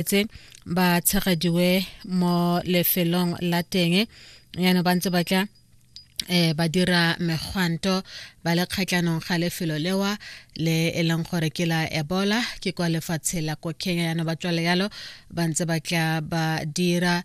tse ba tshegediwe mo lefelong la teng yana ba ntse ba tla eh ba dira megwanto ba le kgatlhanong ga lefelo lewa le e leng gore ke la ebola ke kwa lefatshe la ko kenya yana ba tswale yalo ba ntse ba tla ba dira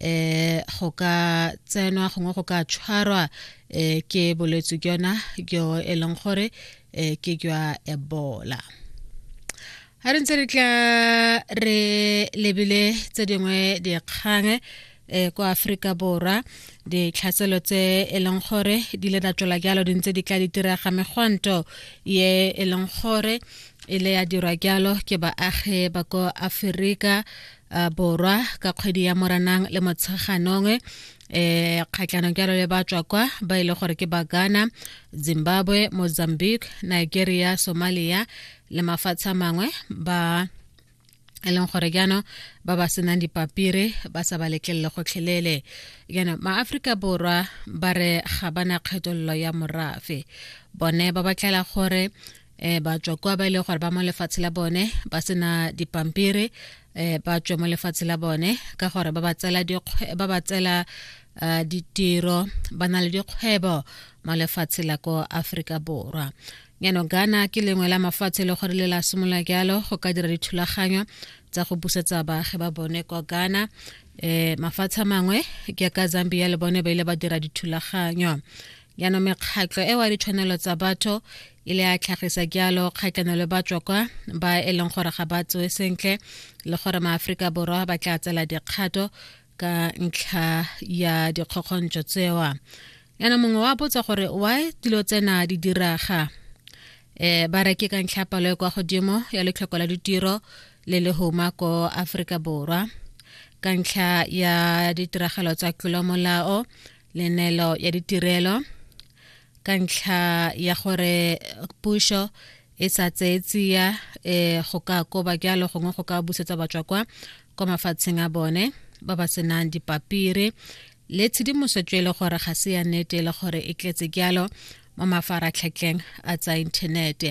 eh go ka tsenwa gongwe go ka tshwarwa eh ke bolwetse jona jo e leng gore eh ke jwa ebola a re ntse re tla re lebile tse dingwe dikgang eh kwa Afrika Borwa ditlhatselo tse e leng gore di le datswela jalo di ntse di tla di direga megwanto ye e leng gore e le ya dirwa jalo ke baagi ba ko Aferika uh, borwa ka kgwedi ya moranang le motsheganong eh kgatlhanong jalo le ba tswa kwa ba ile e gore ke bagana zimbabwe mozambique nigeria somalia le mafatshe a mangwe ba e leng gore jaanong ba ba senang dipapire ba sa ba letlelele gotlhelele jaanong maaforika borwa ba re ga bana kgethololo ya morafe bone ba batlela gore eh ba tswa kwa ba ile e gore ba mo lefatshe la bone ba sena dipampiri eh ba tswa mo lefatshe la bone ka gore ba ba tsela ba ba tsela eh, ditiro ba na le dikgwebo mo lefatshe la ko Afrika Borwa nyano Ghana ke lengwe la mafatshe e le gore le la simola jalo go ka dira dithulaganyo tsa go busetsa baagi ba bone kwa Ghana eh mafatshe mangwe ke ka Zambia le bone ba ile ba dira dithulaganyo yana mekgatlo e wa ditshwanelo tsa batho e le a tlhagisa jalo kgatlhano le batswa kwa ba e leng gore ga ba tsoe sentle le gore maaforika borwa ba tla tsela dikgato ka ntlha ya dikgokgontso tsewa yana mongwe wa botsa gore why dilo tsena di diraga eh ba re ke ka ntlha palo e kwa godimo ya letlhoko la ditiro le le homa ko aforika borwa ka ntlha ya ditiragalo tsa tlolomolao lenelo ya ditirelo ka ntlha ya gore pušo e sa tseye tsia um go ka koba jalo gongwe go ka busetsa batswa kwa kwa mafatsheng a bone ba ba senang dipapiri le tshedimosetso e le gore ga se ya nnete e le gore e tletse jalo mo mafaratlhatlheng a tsa inthanete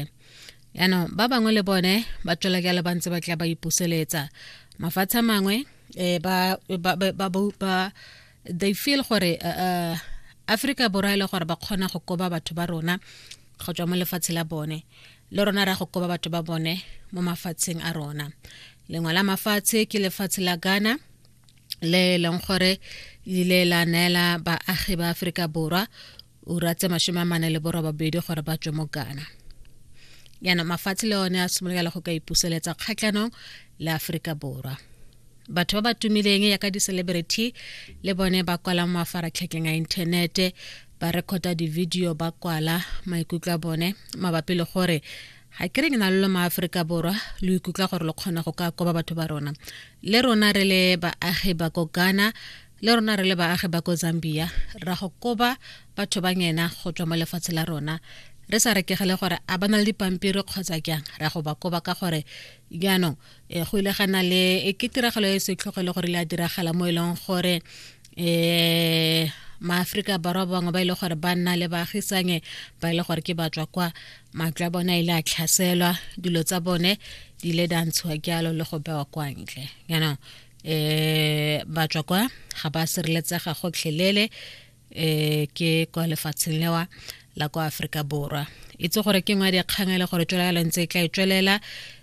yaanong ba bangwe le bone ba tswela jalo ba ntse ba tla ba ipuseletsa mafatshe a mangwe um ba they feel gore uh, uh, africa borwa e le gore ba kgona go koba batho ba rona go tswa mo lefatshe la bone le rona ra go koba batho ba bone mo mafatsheng a rona lengwe la mafatshe ke lefatshe la ghana le e leng gore ile la neela baagi ba aforika borwa ura tse masome a mane le borobabedi gore ba tswe mo ghana yana mafatshe le one a simolola go ka ipuseletsa kgatlhanong le aforika borwa batho ba ba tumileng ya ka di-celebrity le bone ba kwala mo mafaratlhatlheng a inthanete ba rekhota di-video ba kwala maikutlo a bone mabapi le gore ga ke re ke na le lo maaforika borwa lo ikutlwa gore lo kgona go ka koba batho ba rona le rona re le baagi ba ko ghana le rona re le baagi ba ko zambia ra go koba batho ba ngena go tswa mo lefatshe la rona re sa rekegele gore a ba na le dipampiri kgotsa jang ra go ba koba ka gore jaanong e, go ile gana le e, ke tiragalo e setlhogo e le gore le a diragala mo e leng gore um maaforika borwa bangwe ba e le gore ba nna le baagisange ba e le gore ke batswa kwa matlo a bone a ile a tlhaselwa dilo tsa bone di ile da ntshiwa jalo le go bewa kwa ntle jaanong eh batswa kwa ga ba sireletsega gotlhelele eh ke kwa lefatsheng lewa la kwa Afrika Borwa itse gore ke ngwa dikgang le gore tswela le ntse e tla e tswelela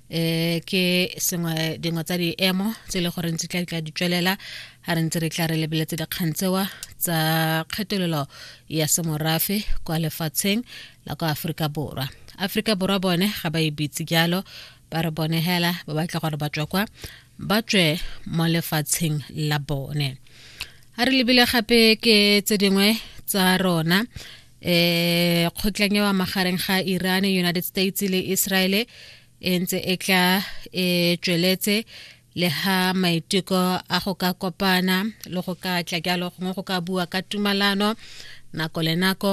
eh ke sengwe dingwe tsa diemo tse e le gore ntse tla tla di tswelela ga re ntse re tla re lebeletse dikgang tsewa tsa kgethololo ya semorafe kwa lefatsheng la kwa Afrika Borwa Afrika Borwa bone ga ba e bitse jalo ba re bone hela ba batla gore batswa kwa ba tswe mo lefatsheng la bone a re lebile gape ke tse dingwe tsa rona eh kgotlang ya magareng ga Iran United States le Israel e ntse e tla e tsweletse le ha maiteko a go ka kopana le go ka tla jalo gongwe go ka bua ka tumalano nako le nako